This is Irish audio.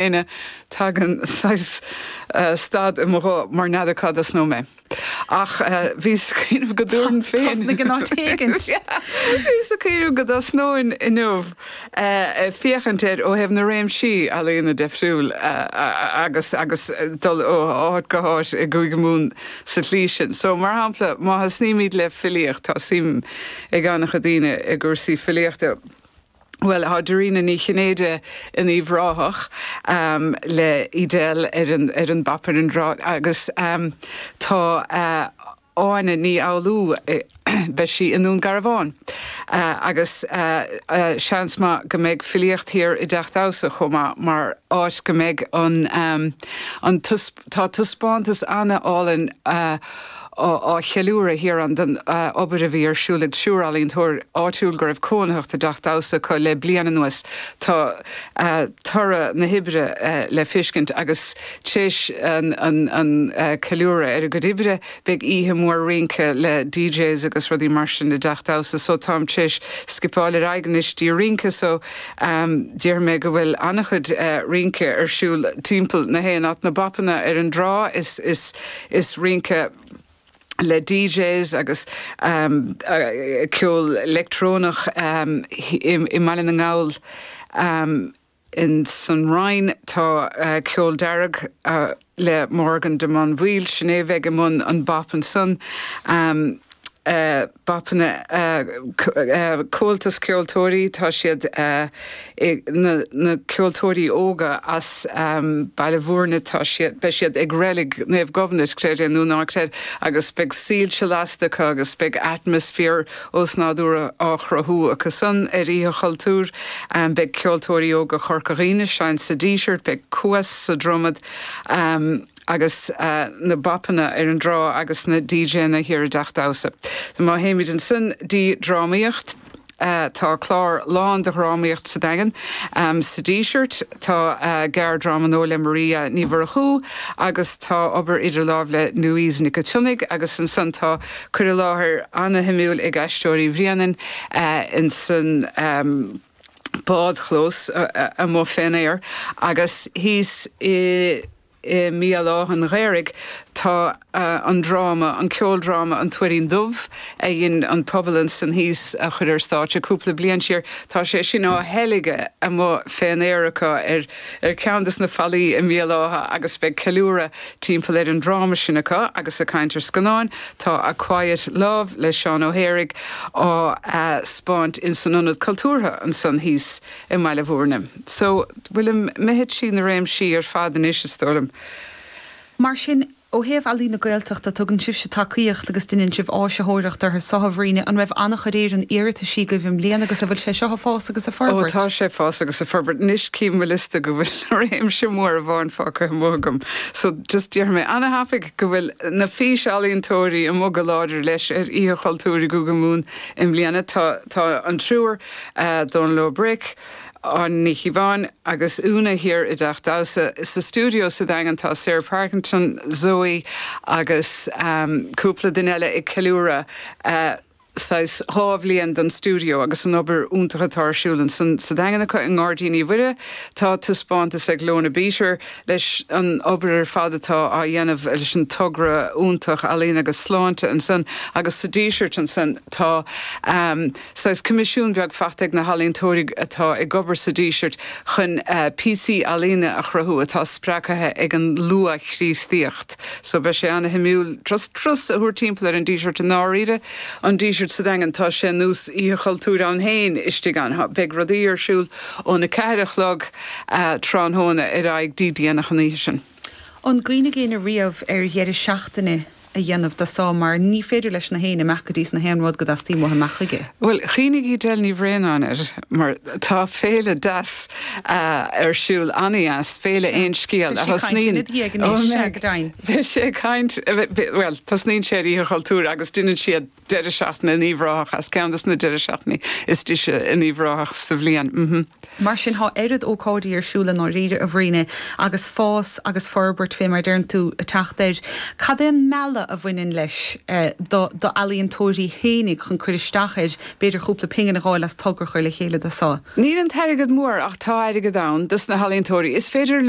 ina dtagann saghas stad i mo ghuth mar n'fheadar cá dtosnóidh mé. Ach bhíos ag cuimhneamh go dtabharfainn féin. Tosnaigh in áit éigint. Bhíos ag cuimhneamh go dtosnóinn inniu ag féachaint air ó thaobh na réimsí ealaíona deifriúil agus agus dul ó áit go háit i gCúige Mumhan sa tslí sin. So, mar shampla, má thosnaímid le filíocht, tá suim ag an-chuid daoine i gcúrsaí filíochta, Bhuel, tá Dairena Ní Chinnéide in Uíbh Ráthach le Edel ar an bop ar an dtrá agus tá Áine Uí Fhoghlú, beidh sí i nDún Garbhán agus seans maith go mbeidh filíocht thiar i dTeach Damhsa chomh maith mar áit go mbeidh an an Tá taispeántas an-álainn á cheiliúradh thiar ann den obair a bhí ar siúl ag triúr ealaíontóir áitiúil go raibh cónaitheacht i dteach damhsa acu le bliain anuas. Tá toradh na hoibre le feiscint agus tréis an ceiliúradh ar a gcuid oibre, Beidh oíche mhór rince le DJs agus rudaí mar sin i dTeach Damhsa so táim tar éis scipeáil ar aghaidh anois dtí an rince so déarfaidh mé go bhfuil an-chuid rince ar siúl timpeall na haon áit, na bopanna ar an dtrá is rince le DJs agus ceol leictreonach i mBaile na nGall. Insan Rinn tá ceol dearg le Morgan de Móinbhíol. Sin é a bheidh i mbun an bop ansan. Bopanna Comhaltas Ceoltóirí tá siad na ceoltóirí óga as Baile Mhúirne tá siad, beidh siad ag Reilig Naomh Gobhnait, creid é nó ná creid, agus beidh soilse lasta acu agus beidh atmaisféar osnádúrtha á chruthú acusan ar Oíche Chultúir. Beidh Ceoltóirí Óga Chorca Dhuibhne, seinnt sa Díseart, beidh Cuas sa Dromad agus na bopanna ar an dtrá agus na DJanna thiar i dTeach Damhsa. Má théimid ansan dtí drámaíocht, tá clár lán de dhrámaíocht sa Daingean, sa Díseart, Tá gearrdráma nua le Maria Ní Mhurchú agus tá obair idir lámh le Louise Nic a tSionnaigh agus ansan tá cur i láthair ana-shuimiúil ag Aisteoirí Bhréanainn insan bádchlós amuigh fén aer agus thíos i I mBéal Átha an Ghaorthaidh tá an dráma, an ceoldráma An Tuairín Dubh a dhein an pobal ansan thíos a chur ar stáitse cúpla bliain siar, tá sé sin á theilgeadh amuigh fén aer acu ar cheann de na fallaí i mBéal Átha agus beidh ceiliúradh timpeall ar an dráma sin acu agus ag caint ar scannáin tá A Quiet Love le Seán Ó hIarlaithe á 'spáint insan Ionad Cultúrtha ansan thíos. i mBaile Mhúirne. So, bhfuil an mithid sí na réimsí ar fad anois is dóigh liom. Mar sin, ó thaobh Ealaín na Gaeltachta, tugann sibhse tacaíocht agus deineann sibh áisitheoireacht orthu seo, a Bhriain, an raibh an-chuid iarrataisí agaibh i mbliana agus an bhfuil sé seo ag fás agus ag forbairt? Ó tá sé ag fás agus ag forbairt. Anois cím óm liosta go bhfuil réimse mór amháin fágtha amuigh agam. So, just déarfaidh mé ana-thapaidh go bhfuil na físealaíontóirí amuigh go láidir leis ar Oíche Chultúir i gCúige Mumhan i mbliana. Tá, tá an triúr. Dónall Ó Bric, Áine Ní Chíobháin agus Úna thiar i dTeach Damhsa sa stiúideo sa Daingean tá Sarah Parkinson, Zoe agus cúpla duine eile ag ceiliúradh saghas dhá bhliain den stiúideo agus an obair iontach atá ar siúl ansan. Sa Daingean acu i nGairdín Mhuire tá taispeántas ag Lorna Beater leis an obair ar fad atá á dhéanamh leis an togra iontach Ealaín agus Sláinte ansan agus sa Díseart ansan tá. Saghas coimisiún beag faighte ag na healaíontóirí atá ag obair sa Díseart chun píosaí ealaíne a chruthú atá spreagtha ag an luath-Chríostaíocht. So beidh sé an-shuimiúil turas a thabhairt timpeall ar an Díseart i ndáiríre. An Díseart sa Daingean, tá sé ar nós Oíche Chultúir ann féin istigh ann. Beidh rudaí ar siúl ón a ceathair a chlog tráthnóna ar aghaidh dtí déanach an oíche sin. An gcuimhnigh éinne riamh ar dheireadh seachtaine a dhéanamh de seo mar ní féidir leis na héinne imeacht go dtí is na haon rud go dteastaíonn uathu imeacht chuige? Bhuel, chuimhnigh Edel Ní Bhraonáin air mar tá féile deas ar siúl, an-deas, Féile Aon Scéal a thosnaíonn, beidh sé ag caint ina dhiaidh ag an mBis ea, beidh sé ag caint, bhuel, tosnaíonn sé ar Oíche Chultúir agus deineann siad, Deireadh seachtaine in Uíbh Ráthach as. Ceann des na deireadh seachtaine is deise in Uíbh Ráthach sa bhliain. Mar sin tá oiread ócáidí ar siúl i ndáiríre, a Bhríghne, agus fás agus forbairt, fé mar a deireann tú, ag teacht air. Cad é an mealladh a bhaineann leis do d'ealaíontóirí fhéinig chun cur isteach air, b'fhéidir cúpla pingin a dh'fháil as togra a chur le chéile dó? Sea, níl an t-airgead mór ach tá airgead ann dos na healaíontóirí is féidir leo